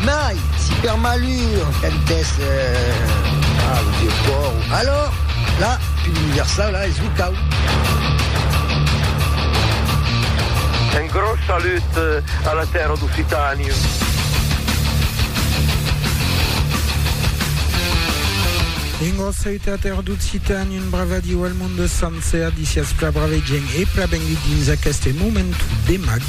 Mai, si per malur cantès a lo vieu còr, alòr, la pil universau, la, es lo cau. Un gròs salut a la tèrra d'Occitània. Dingos, Sèu Tèater d'Occitània. Bravadiu al monde sancer, disiatz pla brave gent e pla benlhit dins aqueste momentu de mag,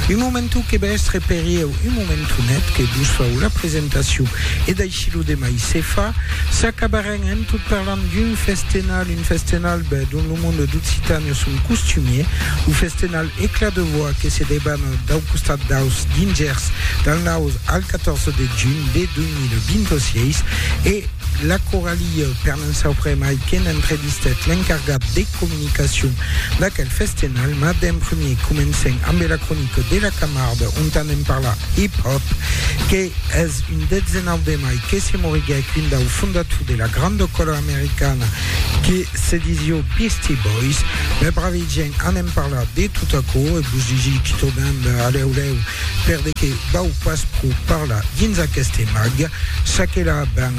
un momentu que va èstre per ieu un momentu net que vos fau la presentacion e d'aicí lo demai se fa, s'acabarem en tot parlant d'un festenal, un festenal ben dont lo monde d'Occitània son costumier, lo festenal Eclat de voix que se debana dau costat daus dingèrs del naus al 14 de junh de 2026 e la coralia per En sauprém aiqué n'entrevistèt l'encargat de comunicacion d'aquel festenal, mas d'en premier comencem ambe la cronica de la Camarde ont anem parlar hip-hop que es un 19 de mai que se moriguèc un dau fondator de la granda cola americana que se disió Beastie Boys. Mes bravi gents, anem parlar de tot aquò e vos digi qui trobem alèu lèu Per de que vau pas pro parlar dins aqueste mag, ça que la ben,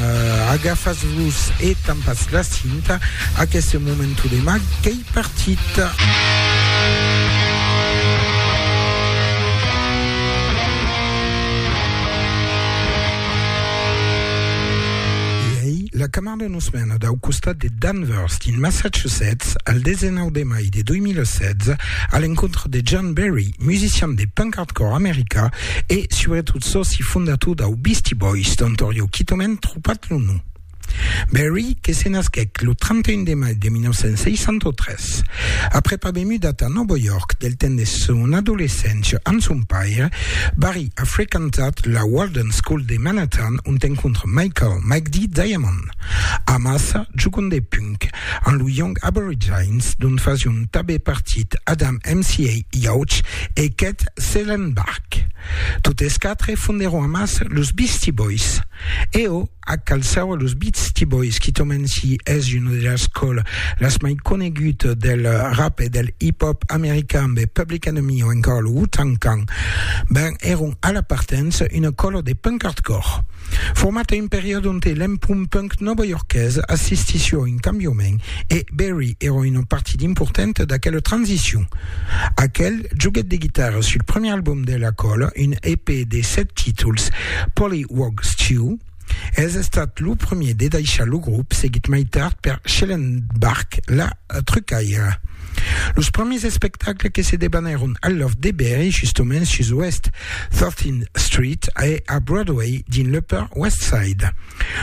agafas-vos e tampas la cinta, aqueste momento de mag qu'ei partit. Pendent una setmana dau costat de Danvers, dins Massachusetts, al 19 de mai de 2016, a l'encontre de John Berry, musician de punk hardcore americà e, subretot, sòci fondator dau Beastie Boys, dont aurieu quitament tropat lo nom. Berry, que se nasquèc lo 31 de mai de 1963, après pas ben mudat a Nòva York del temps de son adolescéncia amb son paire, Barry, A frequentat la Walden School de Manhattan, ont encontre Michael Mike D. Diamond. Amassa jogant de punk amb lo Young Aborigines, dont fasión tabé partit Adam MCA. Yauch e Kett Zellenbach. Totes quatre fonderón amassa los Beastie Boys. Eo A Calçau a los Beastie Boys, qui tòmen si es una de las còla las mai conegut del rap e del hip hop american be Public Enemy o encara lo Wu-Tang Clan, ben èron a la partença una còla de punk hardcore. Format a un periòde onte l'empont punk novaiorqués assistissió a un cambiament e Berry èra una partit importanta d'aquela transicion. Aquel joguet de guitarra sul premier album de La Cola, un EP de 7 títols, Pollywog Stew, es estat lo premier de daishar lo grop, seguit mai tard per Schellenbach La Trucaira. Los premiers espectacles que se debanèron al Loft de Berry, justoments sus West 13th Street e a Broadway dins l'Upper West Side.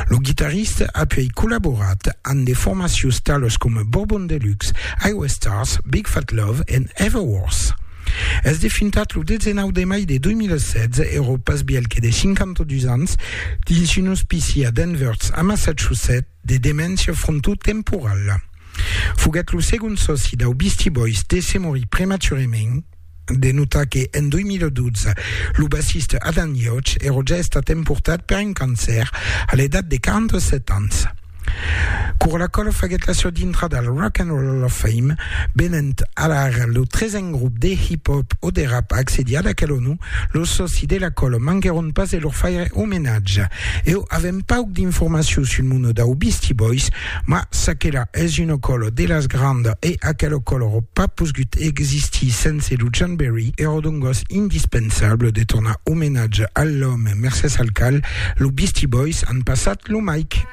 Lo guitarrista apuèi collaborat amb de formacions talas coma Bourbon Deluxe, Iowa Stars, Big Fat Love e Everworth. Es defuntat lo 19 de mai de 2016, èra pas bièlh que de 52 ans, dins un ospici a Danvers, a Massachusetts, de demència frontotemporala. Foguèt lo segond sòci dau Beastie Boys de se morir prematurament, De notar que, en 2012, lo bassista Adam Yauch èra ja estat emportat per un cancèr a l'edat de 47 ans. Cura la quala faguèt la sua dintrada al Rock and Roll Hall of Fame, venent alara lo tresen grop de hip-hop o de rap a accedir ad aquel onor, los sòci de la quala manquèron pas de lor faire omenatge. Eu avèm pauc d'informacion sul mono dau Beastie Boys, Mas s'aquela es una còla de las grandas e aquela còla aurà pas posgut existir sense lo Janberry, èra dongos indispensable de tornar omenatge a l'òme mercés al cal los Beastie Boys an passat lo Mike.